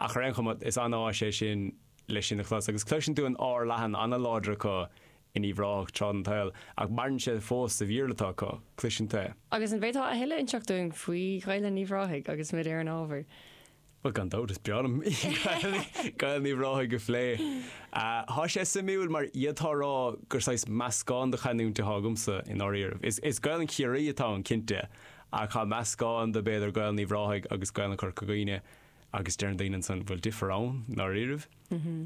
Ach ar aon chuma, is an-áis é sin le sin a chlos, agus cloiseann tú an r leathan an-láidir acu in Uíbh Ráthach tráth den tsaol, ach maireann sé fós sa Bhéarla atá acu, cloiseann tú é. Agus an bhféadfá a thuilleadh inseacht dúinn faoi Ghaelainn Uíbh Ráthaigh agus muid ar an ábhar? Bhuel, gan dabht, is breá liom Gaelainn Uíbh Ráthaigh a phlé. Thá sé suimiúil, mar d'fhéadfá a rá gur saghas meascán de chanúint athá agamsa, i ndáiríribh. Is is Gaelainn Chiarraí atá ann, cinnte, ach thá meascán de, b'fhéidir, Gaelainn Uíbh Ráthaigh agus Gaelainn Chorca Dhuibhne, agus deireann daoine ansan bhfuil difear ann i ndáiríribh.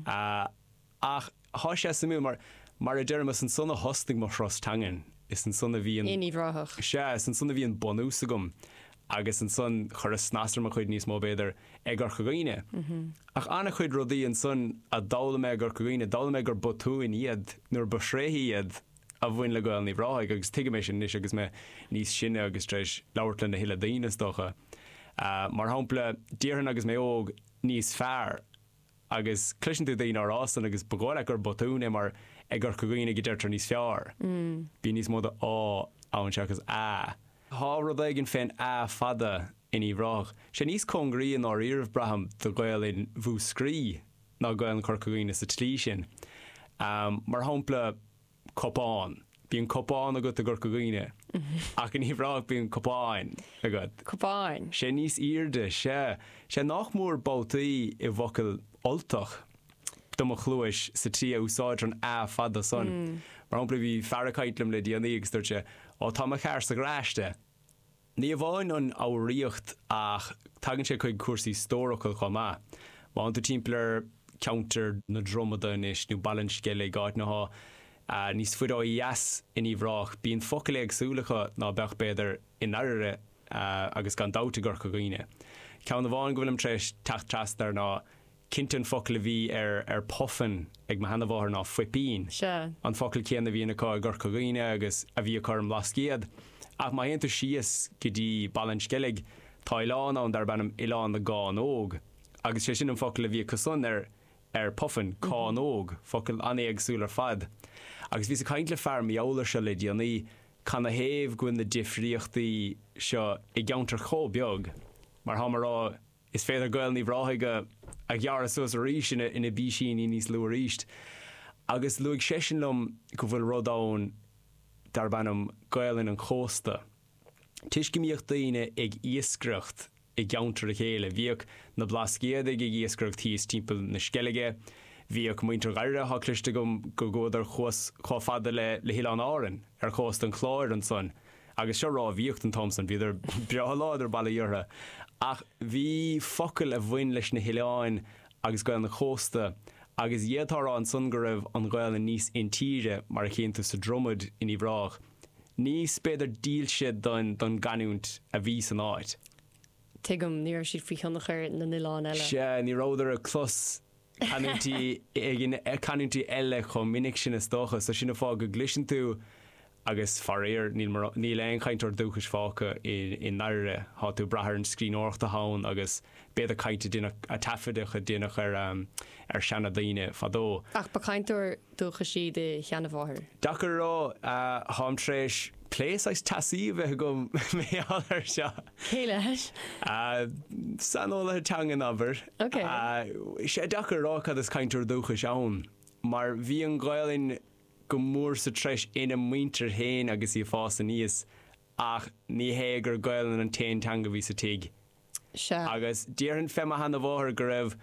Ach thá sé suimiúil mar, mar a deirim, is ansan a thosnaigh mo thuras teangan, is ansan a bhí an, In Uíbh Ráthach. sea, is ansan a bhí an bunús agam agus ansan chuireas snas ar mo chuid níos mó, b'fhéidir, i gCorca Dhuibhne. Ach an-chuid rudaí ansan a d'fhoghlaim mé i gCorca Dhuibhne, d'fhoghlaim mé gur botúin iad nuair ba thréithe iad. a bhain le Gaelainn Uíbh Ráthaigh agus tuigim é sin anois agus mé níos sine agus tar éis labhairt lena thuilleadh daoine, is dócha. Mar shampla, déarfainn agus mé óg, 'níos fearr'. Agus cloiseann tú daoine á rá san agus ba dhóigh leat gur botún é mar i gCorca Dhuibhne go deirtear 'níos feárr'. Bíonn níos mó de 'á' ann seachas 'a'. Thá rud éigin fén 'a' fada in Uíbh Ráthach. Sé níos cóngaraí i ndáiríribh, braithim, do Ghaelainn Mhúscraí ná Gaelainn Chorca Dhuibhne sa tslí sin. Mar shampla, cupán. Bíonn cupán agat i gCorca Dhuibhne. Ach in Uíbh Ráthach bíonn cupán agat. Cupán. Sé níos aoirde, sea. Sé nách mór babhtaí i bhfocail Ultach do mo chluais sa tslí a úsáidtear an a fada san. Mar shampla bhí fear ag caint liom le déanaí agus dúirt sé, Ó tá mo charr sa gharaiste. Ní amháin an fhoghraíocht ach tagann sé chuig cúrsaí stórfhocal chomh maith. Má théann tú timpeall ar cheantar na Dromada anois nó Baile an Sceilg, áiteanna athá níos faide ó dheas in Uíbh Ráthach, bíonn focail éagsúla acu ná beadh, b'fhéidir, i nDairbhre agus gan dabht i gCorca Dhuibhne. Ceann amháin go bhfuilim tar éis teacht trasna air ná Cinnte an focal a bhí ar ar Puffin ag mo sheanamháthair ná fuipín. Sea. An focal céanna a bhíonn acu i gCorca Dhuibhne agus a bhí acu ar an mBlascaod. Ach má théann tú síos go dtí Baile an Sceilg, tá oileán ann darb ainm Oileán na gCánóg agus sé sin an focal a bhí acusan ar ar Puffin, cánóg, focal an-éagsúil ar fad. Agus bhíos ag caint le fear mar gheall air seo le déanaí cad ina thaobh go bhfuil na difríochtaí seo i gceantar chomh beag mar thá mé a rá Is féidir Gaelainn Uíbh Ráthaigh a a ghearradh suas arís ina ina bpísíní níos lú arís. Agus luaigh seisean liom go bhfuil rud ann darb ainm Gaelainn an Chósta. Toisc go mbíodh daoine ag iascaireacht i gceantar a chéile, bhíodh na Blascaodaigh ag iascaireacht thíos timpeall na Sceilge, bhíodh muintir Dhairbhre, tá cloiste agam go gcuadar suas chomh fada le le hOileán Árainn, ar chósta an Chláir ansan. Agus is dócha go mbíodh an t-am san, bhíodar breá láidir, Baoi Bhéarra, ach bhí focail a bhain leis na hoileáin agus Gaeil na cósta, agus d'fhéadfá a rá ansan go raibh an Ghaelainn níos intíre, mar a chíonn tú sa Dromad in Uíbh Ráthach, níos, b'fhéidir, dílse don, don gcanúint a bhí san áit. Tuigim, ní raibh siad faoi thionchar na n-oileán eile. Sea, ní rabhadar ag clos. canúintí éigin, canúintí eile chomh minic sin is dócha, so sin an fáth go gcloiseann tú agus faraor níl mor, níl aon chainteoir dúchais fágtha i ndáiríre, tá tú ag brath ar an scríbhneoireacht atá ann agus b'fhéidir caint a deineadh, taifeadtaí a deineadh ar ar seana daoine fadó. Ach ba chainteoir dúchais í do sheana mháthair? Deacair a rá. Táim tar éis plé saghas teasaí a bheith agam mar gheall ar seo. Cé leis? Saineolaithe teangan abair. Is é deacair a rá cad is cainteoir dúchais ann mar bhí an Ghaelainn go mór sa treis ina muintir féin agus í ag fás aníos ach ní hé gur Gaelainn an t-aon teanga a bhí sa tigh agus déarfainn fé mo sheana mháthair go raibh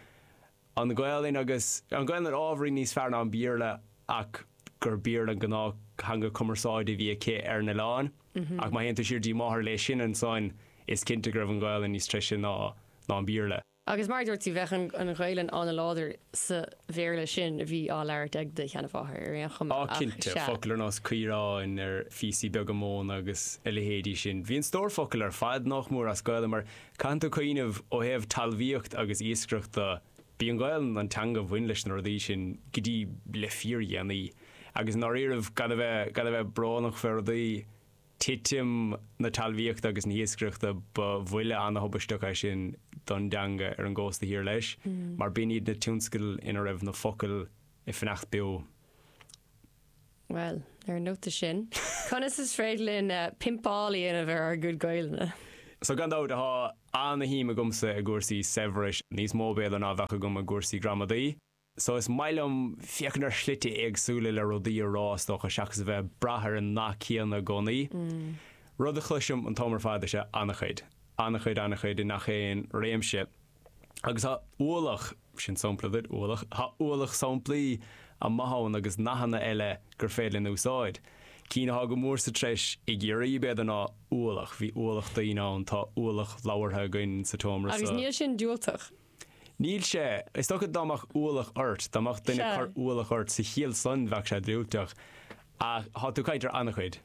an Ghaelainn agus an Ghaelainn ábhairín níos fearr ná an Béarla ach gur Béarla an gnáth theanga cumarsáide a bhí aici ar an oileán. Ach má théann tú siar dtí máthair léi sin ansan is cinnte go raibh an Ghaelainn níos treise ná an Béarla. Agus mar a dúirt tú, bheadh an Ghaelainn an-láidir sa Bhéarla sin a bhí á labhairt ag do sheanamháthair ar aon chuma. Á cinnte, focail ar nós caoráin, ar phíosaí beaga móna agus a leithéidí sin. Bhí an stór focal ar fad nách mór as Gaelainn mar Caitheann tú cuimhneamh, ó thaobh talmhaíocht agus iascaireachta, b'í an Ghaelainn an teanga bhain leis na rudaí sin go dtí le fíordhéanaí. Agus i ndáiríribh, gan a bheith, gan a bheith brónach fé rudaí, titim na talmhaíochta agus na hiascaireachta ba bhuille ana-thubaisteach é sin don dteanga ar an gcósta thiar leis, mar b'in iad na tionscail ina raibh na focail ag fanacht beo. Bhuel, ar an nóta sin, conas is féidir linn pimpeáil a dhéanamh ar ár gcuid Gaelainne? So, gan dabht, tá ana-shuim agamsa i gcúrsaí saibhris, níos mó b'fhéidir ná a bheadh agam i gcúrsaí gramadaí. So, is maith liom féachaint ar shlite éagsúla le rudaí a rá, is dócha, seachas a bheith ag brath ar an nath céanna i gcónaí. Rud a chloisim an t-am ar fad is ea ana-chuid. Ana-chuid, ana-chuid, i ngach aon réimse. Agus tá ualach, sin sompla duit, ualach, tá ualach somplaí amuigh ann agus nathanna eile gur féidir linn a úsáid. Cinn atá go mór sa treis i gCiarraí b'fhéidir ná ualach, bhí ualach daoine ann, tá ualach labhartha againn sa tseomra seo. Agus níl sin diúltach. Níl sé. Is dócha dá mbeadh ualach ort, dá mbeadh duine ag cur ualach ort sa chiall san bheadh sé diúltach. Ach tá tú ag caint ar ana-chuid.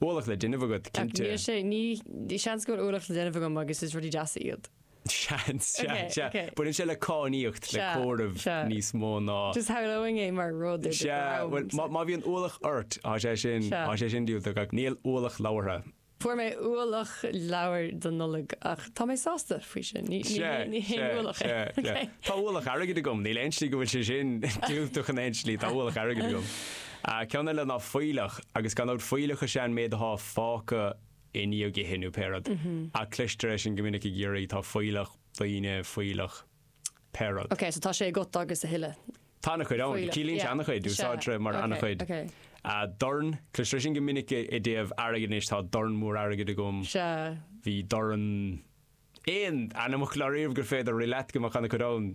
Ualach le déanamh agat, cinnte. Níl sé, ní, seans go bhfuil ualach le déanamh agam agus is rudaí deasa iad. Seans, sea, Ok, sea. ok. Baineann sé le cainníocht, le Sea, comhaireamh sea. níos mó ná. Just shamhlóinn é mar rud ar do Sea, bhuel, dhrom. má, má bhíonn ualach ort, tá sé sin, Sea. tá sé sin diúltach ach níl ualach leabhartha. Fuair mé ualach leabhair don Nollaig ach tá mé sásta faoi sin. Ní, ní, Sea, haon- ní haon sea, ualach é. sea, sea. Ok. Tá ualach airgid agam, níl aon slí go bhfuil sé sin diúltach in aon slí, tá ualach airgid agam. Ah, ceann eile ná fuílleach, agus gan dabht fuílleach is ea an méid athá fágtha i ndiaidh ithe nó pé rud. Ach cloistear é sin go minic i gCiarraí, tá fuílleach daoine, fuílleach pé rud. Ok, so tá sé agat agus a thuilleadh. Tá an-chuid ann. Fuílleach, Ciallaíonn sé yeah. an-chuid, Is ea. úsáidtear é mar Ok, an-chuid. ok. Ah, dorn, cloistear é sin go minic i dtaobh airgid anois, tá dorn mór airgid agam. Sea. Bhí dorn aon ainmfhocal ariamh gur féidir a rith leat go mbeadh ana-chuid ann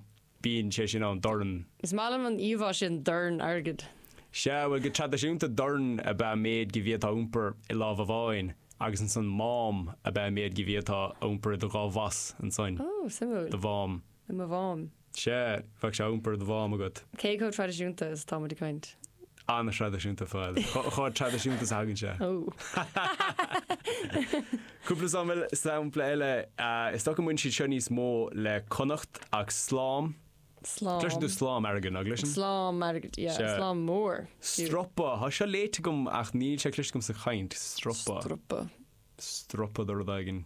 bíonn sé sin ann, dorn. Is maith liom an íomhá sin dorn airgid. Sea, bhuel, go traidisiúnta dorn ab ea méid de bhia atá á iompar i lámh amháin agus ansan mám ab ea méid de bhia atá á iompar i do dhá bhas, ansan. Ó, suimiúil. Do mhám. I mo mhám. Sea, bheadh sé á iompar i do mhám agat. Cé chomh traidisiúnta is atá muid ag caint? An-thraidisiúnta, bhuel, chomh traidisiúnta is a thagann sé. Cúpla sampla eile, is dócha go mbaineann siad seo níos mó le Connacht ach slám. Slám. Cloiseann tú slám airgid, nach gcloiseann? Slám airgid, yeah, slám mór. Stropa, tá seo léite agam ach níl sé cloiste agam sa chaint. Stropa. Stropa. Stropa de rud éigin.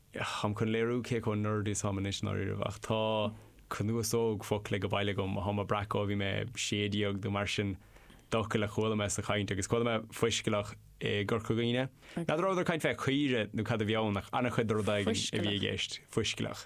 Táim chun léiriú cé chomh nerd is atá mé anois ná riamh ach tá cnuasóg focal age baile agam atáim a' breacadh ó bhí mé 16 nó mar sin d'fhocail a chuala mé sa chaint agus chuala mé fuiscealach i gCorca Dhuibhne. N'fheadar an rabhadar ag caint fé chaoire nó cad a bhí ann ach an-chuid de rud éigin a bhí i gceist. Fuiscealach.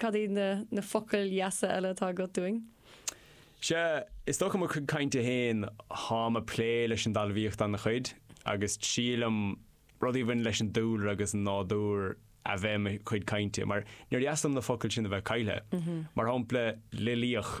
Cad iad na na focail dheasa eile atá agat dúinn? Sea, is dócha mo chuid cainte féin táim a' plé leis an dtalmhaíocht ana chuid agus triailim rudaí a bhaineann leis an dúlra agus an nádúr a bheith i mo chuid cainte mar níor dheas liom na focail sin a bheith caillthe. Mar shampla, loilíoch.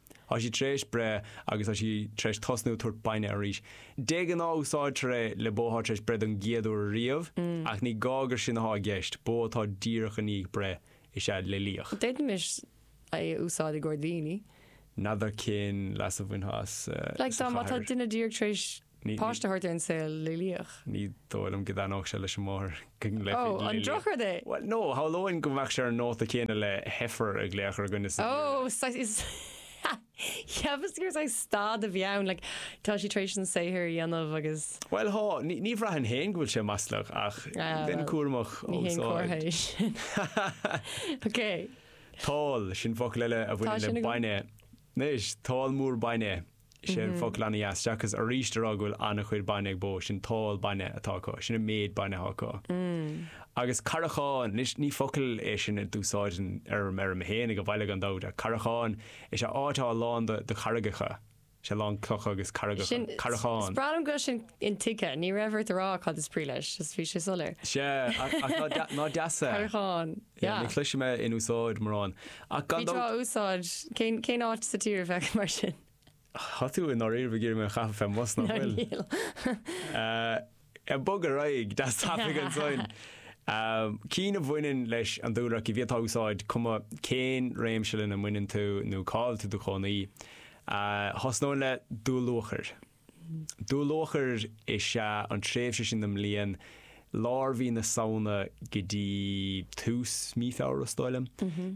Tá sí tar éis breith agus tá sí tar éis tosnú ag tabhairt bainne arís. De ghnáth úsáidtear é le bó atá tar éis breith don gcéad uair ariamh, ach ní gá gur sin atá i gceist, bó atá díreach i ndiaidh breith is ea loilíoch. D'fhéadfaimis é a úsáid i gcomhair daoine. N'fheadar cén leas a bhainfeá as sa chathair. Like má tá duine díreach tar éis. Páiste a thabhairt ar an saol loilíoch. Ní dóigh liom go dtaitneodh sé leis an máthair go nglaofaí loilíoch. Ó, an drochrud é! Bhuel, nó, shamhlóinn go mbeadh sé ar an nóta céanna le heifear a ghlaoch ar dhuine sa deireadh. Ó, saghas is cheapas gur saghas stad a bhí ann, like, tá sí tar éis an saothar a dhéanamh agus. Bhuel, thá, ní bhraithfinn féin go bhfuil sé maslach ach bheinn cúramach ó Ní haon chomhartha é sin. Ok. Tál, sin focal eile a bhaineann le bainne. Anois, tál mór bainne. Is é an focal ana-dheas seachas arís a rá go bhfuil an-chuid bainne ag bó, sin tál bainne atá acu, sin an méid bainne atá acu. Agus carrachán, anois ní focal é sin a d'úsáidfinn ar an bhfeirm féin ag an bhaile gan dabht, ach carrachán, is ea áit atá lán de, de charraigeacha, is ea lán clocha agus carraigeacha, Sin, carrachán. is breá liom go bhfuil sin intuigthe, ní raibh ort a rá cad is brí leis, just bhí sé soiléir. Sea, ach, ach ná, ná deas é? Carrachán. Yeah, ní chloisim é in úsáid mórán. Ach gan dabht. Bhí tráth úsáid. Cén, cén áit sa tír a bheadh mar sin? Tá tú i ndáiríre, ag iarraidh mé a chaitheamh fén mbus nach bhfuil? Ná níl. Eh, bog ar aghaidh, deas tapaidh ansoin. Ahm, cinn a bhaineann leis an dúlra ach, a bhí, atá úsáideach cuma cén réimse lena mbaineann tú nó cá bhfuil tú i do chónaí. Eh, thosnóinn le dúluachair. Dúluachair is ea an tréimhse sin den mbliain, lár mhí na Samhna go dtí tús mhí Feabhra is dóigh liom.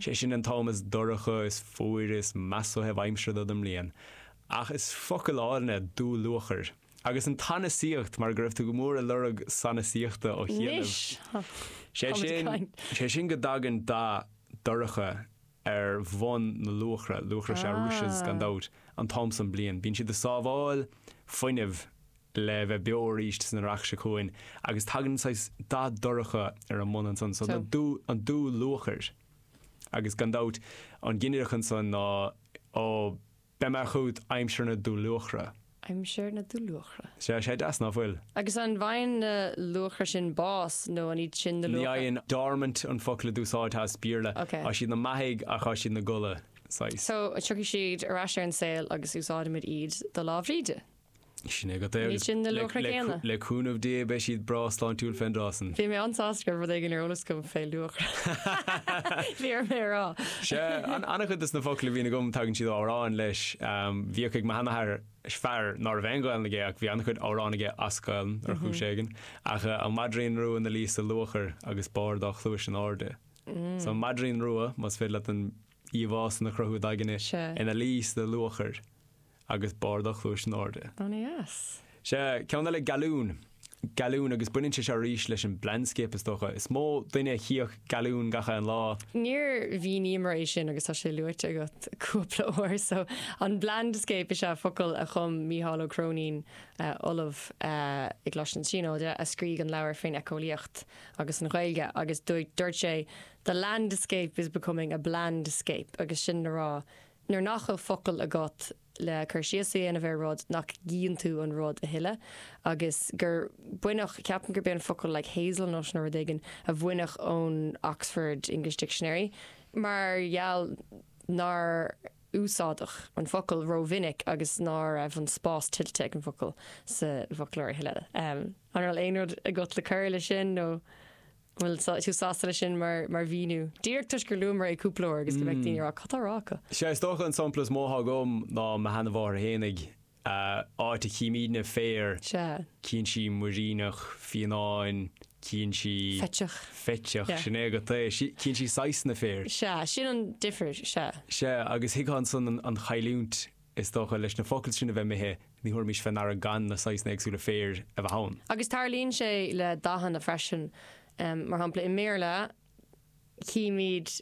Sé sin an t-am is dorcha, is fuaire, is measa ó thaobh aimsire den mbliain. Ach is focal álainn é dúluachair. Agus an tsanasaíocht, mar go raibh tú go mór ag lorg sanasaíochta ó chianaibh. Anois! Sé sin, sé sin go dtagann dath dorcha ar bhun na luachra, luachra is ea rushes gan dabht, an t-am san bliain. Bíonn siad ag sábháil fuinnimh le bheith beo aríst san earrach seo chugainn agus tagann saghas dath dorcha ar a mbun ansan so an dúluachair. Agus gan dabht an ginideach ansan ná, oh, Beidh mé chugat aimsir na dúluachra. Aimsir na dúluachra. Sea, sé deas ná fuil. Agus an bhfaigheann na luachra sin bás nó an iad sin na luachra? Ní fhaigheann. Dormant an focal a d'úsáid as Béarla. Ok. Tá siad ina mbeathaidh ach tá siad ina gcodladh saghas. So, tiocfaidh siad ar ais ar an saol agus úsáidimid iad do Lá Bhríde. Sin é agat é agus le cúnamh Dé beidh siad breá sláintiúil fén dtráth san. Bhí mé an-sásta go raibh rud éigin ar eolas agam fé luachair caithfidh mé a rá. Sea, an-chuid de sna focail a bhíonn agam tagann siad ó amhráin leis. Bhíodh ag mo sheanathair fear ná raibh aon Ghaelainn aige ach bhí an-chuid amhrán aige as Gaelainn ar chúis éigin. Ach an maidrín rua ina luí sa luachair agus barr a dhá chluais in airde. So an maidrín rua, más féidir leat an íomhá san a chruthú id aigne, ina luí sa luachair. agus barr a dhá chluais in airde. Ana dheas. Sea, ceann eile gealbhan. Gealbhan, agus baineann sé seo arís leis an blandscape is dócha. Is mó duine a chíodh gealbhan gach aon lá. Níor mhíníomar é sin agus tá sé luaite agat cúpla uair so an blandscape is ea focal a chum Mícheál Ó Cróinín, eh, ollamh eh, i gColáiste na Tríonóide a scrígh an leabhar fén éiceolaíocht agus an Ghaeilge agus dúirt sé the landscape is becoming a blandscape agus sin le rá Nuair nach bhfuil focail agat le cur síos a dhéanamh ar rud, nach gcíonn tú an rud a thuilleadh? Agus gur baineadh, ceapaim gurb é an focal like hazel nut nó rud éigin a baineadh ón Oxford English Dictionary mar gheall nár úsáideadh an focal ró mhinic agus ná raibh an spás tuillte ag an bhfocal sa bhfoclóir a thuilleadh. An raibh aon rud agat le cur leis sin nó? An bhfuil tú sásta leis sin mar mhíniú? Díreach toisc gur luamar é cúpla uair agus go mbeadh daoine ag rá 'cad tá á rá acu? Sea, is dócha an sampla is mó atá agam ná mo sheanamháthair féinig, áit a chímidne féar. Sea. Cíonn sí muiríneach, fionnán, cíonn sí. Feiteach. Feiteach, sin é agat é. Cíonn sí saghasanna féir. Sea, sin an difir, sea. Sea, agus thuigfeá ansan an chailliúint Is dócha, leis na focail sin a bheith imithe, ní thabharfaimis fé ndeara gan na saghasanna éagsúla féir a bheith ann. Agus tarlaíonn sé le dathanna freisin. Mar shampla, i mBéarla, chímid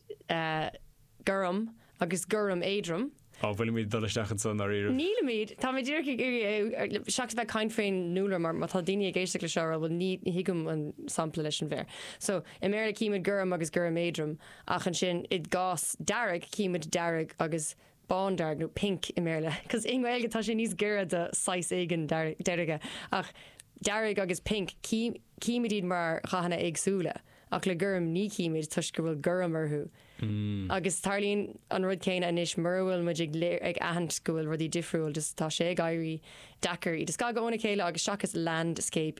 gorm agus gorm éadrom. Á, bhfuilimid ag dul isteach anso, ndáiríribh? Nílimid! Táimid díreach ag iarraidh, seachas a bheith ag caint fén ndúlra, mar má tá daoine ag éisteacht leis seo a rá, bhuel, ní thuigim an sampla leis an bhféar. So, i mBéarla, chímid gorm agus gorm éadrom, ach ansin, i gcás dearg, chímid dearg agus. bándearg nó pink i mBéarla, cos i nGaeilge tá sé níos giorra do saghas éigin deirge, ach dearg agus pink, címid iad mar dhathanna éagsúla, ach le gorm, ní chímid toisc go bhfuil gorm orthu. Agus tarlaíonn an rud céanna anois, mura bhfuil muid ag léir, ag aithint go bhfuil rudaí difriúil, just tá sé ag éirí deacair iad a scagadh óna chéile agus seachas landscape,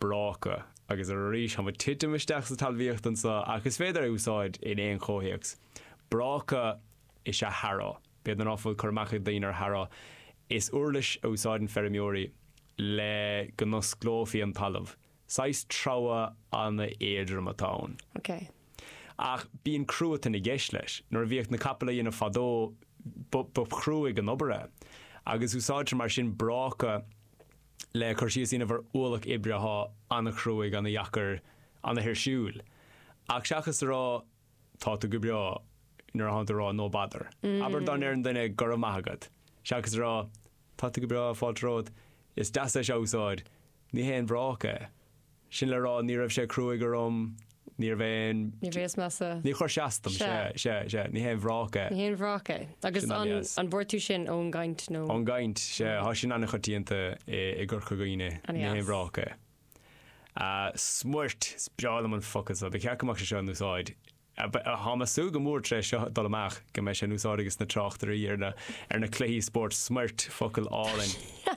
bráca. Agus arís, tá mé ag titim isteach sa talmhaíocht anso, ach is féidir é a úsáid in aon chomhthéacs. Bráca is ea harrow. B'fhéidir ná fuil cur amach ag daoine ar harrow, is uirlis a úsáideann feirmeoirí le go n-osclófaí an talamh. Saghas treabhadh ana-éadrom atá ann. OK. Ach bíonn cruatan i gceist leis. Nuair a bhíodh na capaill á dhéanamh fadó, ba chruaidh an obair é. Agus úsáidtear mar sin bráca le cur síos a dhéanamh ar ualach oibre athá ana chruaidh, ana dheacair, ana thuirsiúil. Ach seachas a rá tá tú go breá, nuair athánn tú a rá no bother. Abair go ndeireann duine go raibh maith agat, seachas a rá tá tú go breá, fáilte romhat, is deas é seo a úsáid, ní haon bhráca é. Sin le rá, ní raibh sé cruaigh orm, ní raibh aon. Ní bhíos measa. Níor chuir sé as dom, sea, sea, sea, ní haon bhráca é. Ní haon bhráca é. Sin an-dheas. Agus an, an bhfuair tú sin ón gcaint nó? Ón gcaint, sea, thá sin an-choitianta i, i gCorca Dhuibhne, ní haon bhráca é. An-dheas. Ah, smuirt, is breá liom an focal seo, ba cheart go mbeadh sé seo in úsáid. Ah, ba- ah, Thá mé ag súil go mór tar éis seo dul amach go mbeidh sé in úsáid aiges na tráchtairí ar na, ar na cluichí spóirt, smuirt, focal álainn.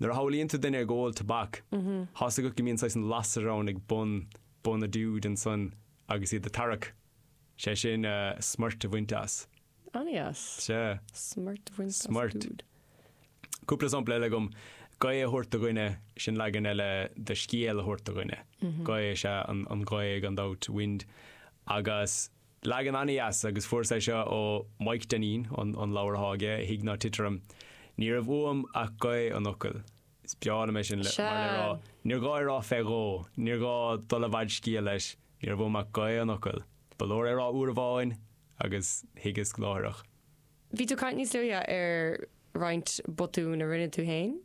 Nuair a shamhlaíonn tú duine ag ól tobac, tá's agat go mbíonn saghas an lasair ann ag bun, bun a dúid ansan agus iad a' tarrac, sé sin eh, smoirt a bhaint as. Ana-dheas. Sea. Smoirt a bhaint as Smoirt. Dúid. Cúpla sampla eile agam, gaoth a thabhairt do dhuine, sin leagan eile de scéal a thabhairt do dhuine. Gaoth is ea an, an ghaoth gan dabht, wind. Agus Leagan ana-dheas agus fuars é seo ó Mhaidhc Dainín, an leabhar atá aige, Thig ná Tit Orm. Ní raibh uaim ach gaoth an fhocail. Is breá liom é sin, mar le rá, níor ghá é rá fé dhó, níor ghá dul i bhfad scéal leis, ní raibh uaim ach gaoth an fhocail. Ba leor é rá uair amháin agus thuigeas láithreach. Bhí tú ag caint níos luaithe ar roinnt botún a rinne tú féin.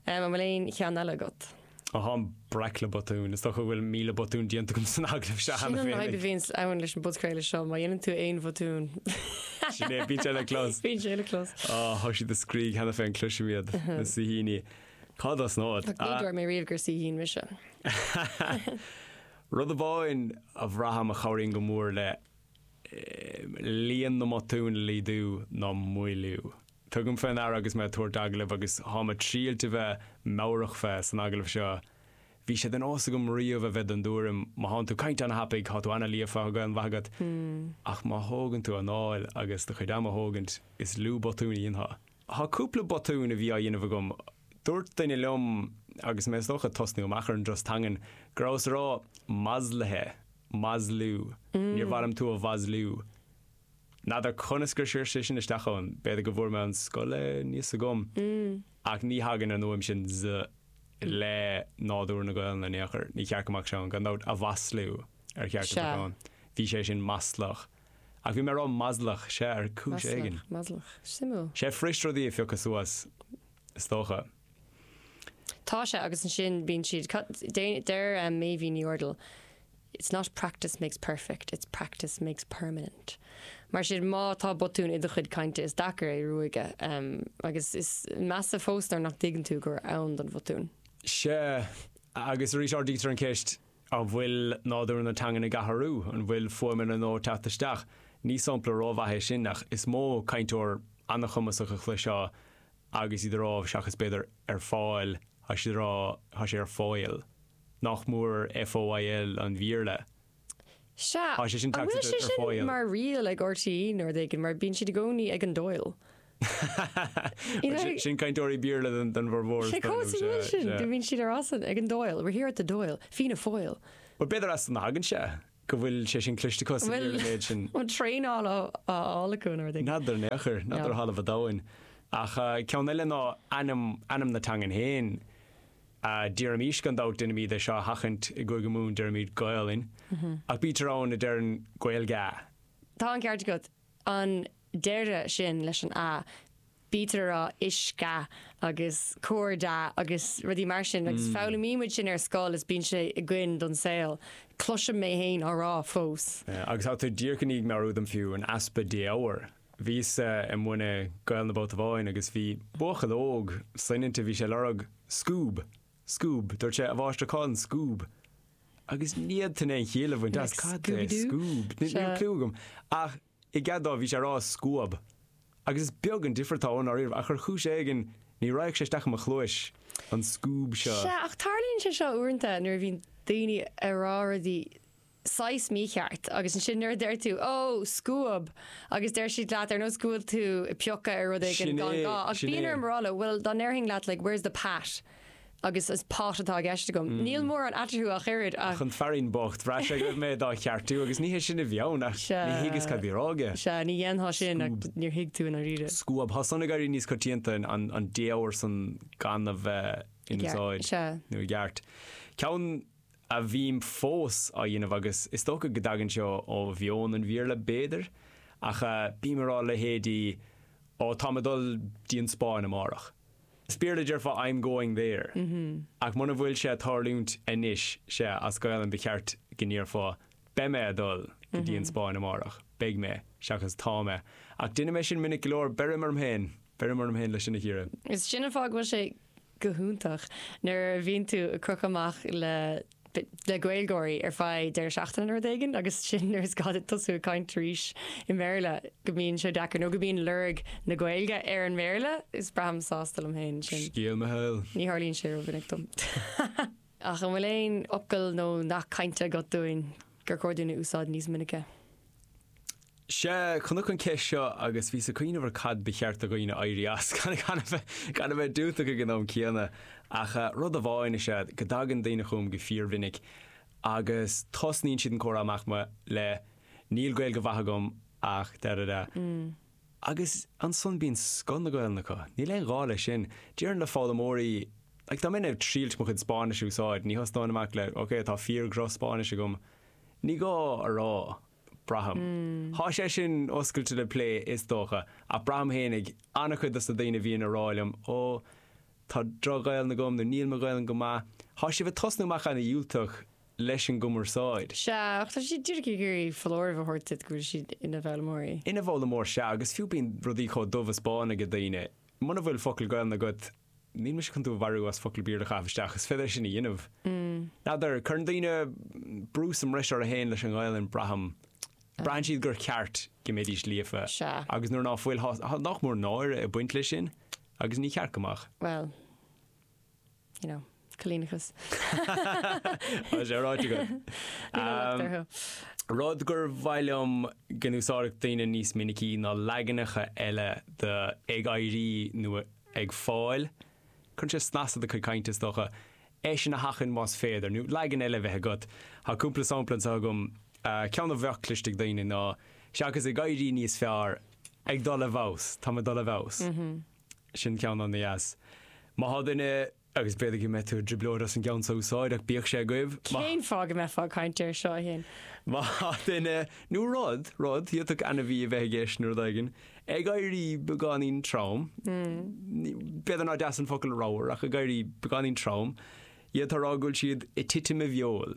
An bhfuil aon cheann eile agat? Ó tháim breac le botúin. Is dócha go bhfuil míle botún déanta agam san agallamh seo cheana féin. Sin an fhadhb a bhíonn ann leis an bpodchraoladh seo, má dhéanann tú aon bhotún. Sin é, bíonn sé le clos. Bíonn sé le clos. Ó, thá siad ag scríobh cheana féin, cloisim iad, na saoithíní. Cá dtosnód? Ach ní dúirt mé riamh gur saoithín mise. Rud amháin a bhraithim a chabhraíonn go mór le líon na mbotún a laghdú ná moilliú. Tugaim fé ndeara agus mé ag tabhairt agallaimh agus thá mé triailt a bheith meabhrach fé san agallamh seo. Bhí sé de nós agam riamh a bheith den dtuairim má thánn tú ag caint ana-thapaidh thá tú ana-líofa thá Gaelainn mhaith agat ach má thógann tú anáil agus do chuid ama a thógaint is lú botún a dhéanfá. Thá cúpla botún a bhí á dhéanamh agam Dúirt duine liom, agus mé is dócha ag tosnú amach ar an dturas teangan, go rabhas ag rá maslaithe, maslú, níor mhaith liom tú a mhaslú. N'fheadar conas gur siar sé sin isteach ann, b'fhéidir go bhfuair mé ón scoil é, níl fhios agam, ach ní thagann an fhuaim sin z le nádúr na Gaolainne in aon chor, ní cheart go mbeadh sé ann, gan dabht, a mhaslú ar cheart go mbeadh ann. Bhí sé sin maslach. Ach bhí mé ag rá maslach, sea, ar chúis éigin. Maslach, maslach, suimiúil. Sea, fuirist rudaí a phiocadh suas. is dócha. Tá sé agus ansin bíonn siad, deir Meidhbhín Ní Úrdail, It's not practice makes perfect, it's practice makes permanent. Mar sin, má tá botún i do chuid cainte is deacair é ruaigeadh agus is measa fós nuair nach dtuigeann tú gur ann don bhotún. Sea, agus arís ardaítear an cheist, An bhfuil nádúr na teangan ag athrú? An bhfuil fuaimeanna nua ag teacht isteach? Ní sampla ró mhaith é sin ach is mó cainteoir an-chumasach a chloisfeá agus iad a rá seachas b'fhéidir ar fáil, tá siad a rá tá sé ar fáil. Nach mór FOIL an Bhéarla? Sea, an bhfuil sé sin mar riail ag RTÉ nó rud éigin mar bíonn siad i gcónaí ag an Dáil? You know. Sin cainteoirí Béarla den bhformhór is dóigh liom. cá bhfuil sin, do bhíonn siad ar as an, ag an Doyle, we're here at the Doyle, Fianna Foyle. Bhuel b'fhéidir as san a thagann sé, go bhfuil sé sin cliste acu sa Bhfuil, Bhéarla an méid sin. bhfuil traenáil á á fháil acu nó rudaí. N'fheadar, n'fheadar, No. n'fheadar ó thalamh an domhain. Ach ceann eile ná ainm, ainm na teangan féin. Ah, déarfaimis gan dabht deinimid é seo a sheachaint i gCúige Mumhan, deirimid Gaolainn. Ach bítear ann a deireann Gaeilga. Tá an ceart agat. An deireadh sin leis an a, bítear ag rá uisca agus cóisda agus rudaí mar sin agus foghlaimímid sin ar scoil is bíonn sé againn don saol. Cloisim mé fhéin á rá fós. Agus tá tú díreach i ndiaidh meabhrú dom fiú, an easpa défhoghair. Bhíos ag múineadh Gaolainne babhta amháin agus bhí buachaill óg soineanta, bhí sé ag lorg scúb. Scoob, dúirt sé, a mháistir cá bhfuil an Scoob? Agus ní fhéadfainn aon chiall a bhaint as, cad é Scoob? Níl cliú agam. Ach i gcead dó bhí sé ag rá Scuab. Agus is beag an difear atá ann i ndáiríre ach ar chúis éigin ní raghadh sé isteach i mo chluais, an Scoob seo. Sea, ach tarlaíonn sé seo uaireanta nuair a bhíonn daoine ag rá rudaí saghas mícheart agus ansin nuair a deir tú ó scuab agus deir siad leat ar nós go bhfuil tú ag piocadh ar rud éigin gan gá ach bíonn orm a rá leo bhuel dá ndéarfainn leat like where's the pat agus is pot atá i gceist agam. Níl mórán eatarthu ach oiread ach. Ach an fearín bocht, bhraith sé go raibh mé dá cheartú agus ní hé sin a bhí ann ach níor thuigeas cad a bhí ag rá aige. Sea, ní dhéanfá sin ach Scuab. níor thuig tú i ndáiríre. Scuab. Thá san ag éirí níos coitianta an défhoghar san gan a bheith in úsáid. Sea. nó i gceart. Ceann. a bhím fós á dhéanamh agus is dócha go dtagann sé ó mheon an Bhéarla b'fhéidir ach bím ag rá leithéidí oh tá mé ag dul go dtí an Spáinn amárach. As Béarla déarfá I'm going there ach mura bhfuil sé ag tarlúint anois sea as Gaolainn ba cheart go ndéarfá beidh mé ag dul go dtí an Spáinn amárach, beidh mé seachas tá mé. Ach déanaim é sin minic go leor, beirim orm féin, beirim orm féin leis sin a chíoradh. Is sin an fáth go bhfuil sé go hiontach nuair a bhíonn tú ag crochadh amach le le Gaeilgeoirí ar feadh deireadh seachtaine nó rud éigin agus ansin nuair is gá duit tosú ag caint arís i mBéarla go mbíonn sé deacair nó go mbíonn lorg na Gaeilge ar an mBéarla. Is braithim sásta liom féin sin. Scéal mo shaoil. Ní tharlaíonn sé rómhinic dom. Ach an bhfuil aon fhocal nó nath cainte agat dúinn? gur chóir dúinn a úsáid níos minice. Sea, chonac an ceist seo agus bhíos ag cuimhneamh ar cad ba cheart do dhaoine éirí as, gan a bheith diúltach ag an am céanna. Ach rud amháin is ea go dtagann daoine chugam go fíormhinic agus tosnaíonn siad an comhrá amach le Níl Gaeilge mhaith agam ach da da da. Agus ansan bíonn scoth na Gaolainne acu. Níl aon ghá leis sin. Déarfainn le foghlaimeoirí, like, dá mbeinn ag triailt mo chuid Spáinnis a úsáid, ní thosnóinn amach le, ok, tá fíordhroch Spáinnis agam. Ní gá a rá, braithim. Thá sé sin oscailte le plé is dócha, ach braithim féinig ana-chuid dos na daoine a bhíonn ag rá liom, ó, tá droch Ghaolainn agam nó níl mo Ghaolainn go maith. thá siad ag tosnú amach ana dhiúltach. leis an gcumarsáid. Sea, ach tá siad díreach ag iarraidh foláireamh a thabhairt duit go bhfuil siad ina bhfoghlaimeoirí. Ina bhfoghlaimeoir, sea, agus fiú bíonn rudaí chomh dubh is bán ag daoine. Muna bhfuil focal Gaolainne agat, níl mise chun tú a mharú as focal Béarla a chaitheamh isteach, is féidir é sin a dhéanamh. N'fheadar, cuireann daoine brú sa mbris orthu fhéin leis an nGaolainn, braithim. Braitheann siad gur ceart go mbeidís líofa. Sea. Agus nuair ná fuil, tá nach mór náire ag baint leis sin, agus ní ceart go mbeadh. Bhuel. you know, coilíneachas. Tá sé ráite agat. Ní raibh locht orthu. Rud gur mhaith liom go n-úsáidfeadh daoine níos minicí ná leaganacha eile de 'ag éirí' nó 'ag fáil'. Cuireann sé snas ar do chuid cainte, is dócha. É sin a sheachaint más féidir, nó leagan eile a bheith agat. Tá cúpla sampla anseo agam. Ceann a bheadh cloiste ag daoine ná, 'Seachas 'ag éirí' níos fearr, 'ag dul i bhfeabhas'. 'Táim ag dul i bhfeabhas'. Sin ceann ana-dheas. Má thá duine, agus b'fhéidir go mbeifeá i dtrioblóid as an gceann so a úsáid, ach bíodh sé agaibh, má. Cén fáth go mbeifeá ag caint air seo, a Shin? Má thá duine, nó rud, rud, thiocfadh ainmhí a bheith i gceist nó rud éigin, ag éirí beagáinín trom, b'fhéidir nár dheas an focal ramhar, ach ag éirí beagáinín trom, fhéadfá a rá go bhfuil siad ag titim i bhfeoil.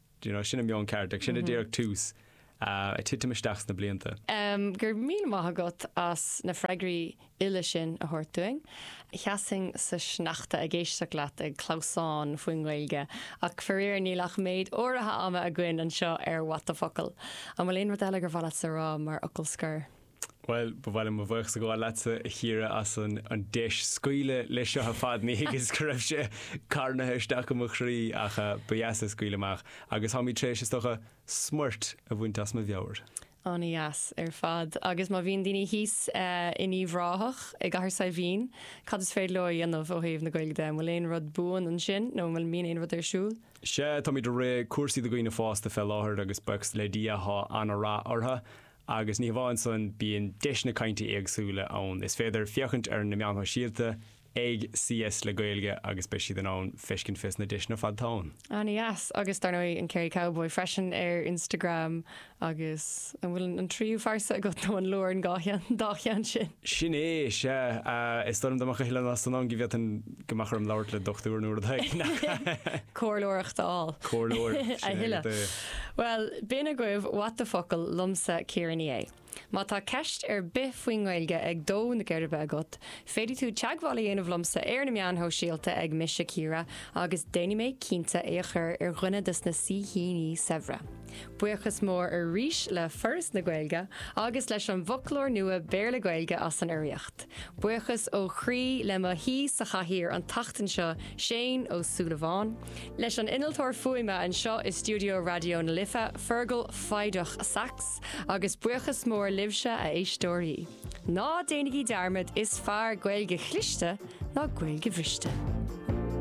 Do you know, sin an meon ceart, ach sin é díreach, tús ag titim isteach sna blianta. Go raibh míle maith agat as na freagraí uile sin a thabhairt dúinn. Sheasfainn sa sneachta ag éisteacht leat ag clamhsán faoin nGaeilge ach faraor níl ach méid áirithe ama againn anseo ar What the Focal. An bhfuil aon rud eile gur mhaith leatsa a rá mar fhocal scoir? Bhuel, ba mhaith liom mo bhuíochas a ghabháil leatsa, a Chiara, as an deis scaoileadh leis seo ar fad. Ní thuigeas go raibh sé carnaithe isteach i mo chroí, ach ba dheas é scaoileadh amach, agus táimid tar éis, is dócha, smúit a bhaint as mo mheabhair. Ana-dheas ar fad. Agus má bhíonn daoine thíos in Uíbh Ráthach, i gCathair Saidhbhín, cad is féidir leo a dhéanamh ó thaobh na Gaeilge de? An bhfuil aon rud buan ansin, nó an bhfuil, mbíonn aon rud ar siúl? Sea, táimid ag rith cúrsaí do dhaoine fásta fé láthair, agus buíochas le Dia, thá ana-rath orthu. Agus ní hamháin san, bíonn deiseanna cainte éagsúla ann. Is féidir féachaint ar na meáin shóisialta ag CS le Gaeilge agus beidh siad in ann feiscint pé deiseanna ar fad atá ann. Ana dheas. Agus dar ndóigh an Kerry Cowboy freisin ar Instagram agus an bhfuil an tríú phearsa agat nó an leor an dhá cheann sin? Sin é, sea. Is dóigh liom dá mbeadh a thuilleadh ná san ann go bhféadfainn Go mbeadh orm labhairt le dochtúir nuair atá ag nach. comhairleoireacht a fháil. Comhairleoir, sin é a thuilleadh. duine. Bhuel, b'in agaibh What the Focal liomsa Ciara Ní É. Má tá ceist ar bith faoin nGaeilge ag dó na geirbe agat, féadfaidh tú teagmháil a dhéanamh liomsa ar na meáin shóisialta ag MiseCiara agus déanfaidh mé cinnte é a chur ar dhuine dos na saoithíní saibhre. Buíochas mór arís le Foras na Gaeilge agus leis an bhfoclóir nua Béarla-Gaeilge as an urraíocht. Buíochas ó chroí le mo shaoi sa chathaoir an tseachtain seo, Seán Ó Súilleabháin. Leis an innealtóir fuaime anseo i stiúideo Raidió na Life, Fergal Foighdeach Sax. Agus buíochas mór libhse, a éisteoirí. Ná déanaigí dearmad, is fearr Gaeilge chliste ná Gaeilge bhriste.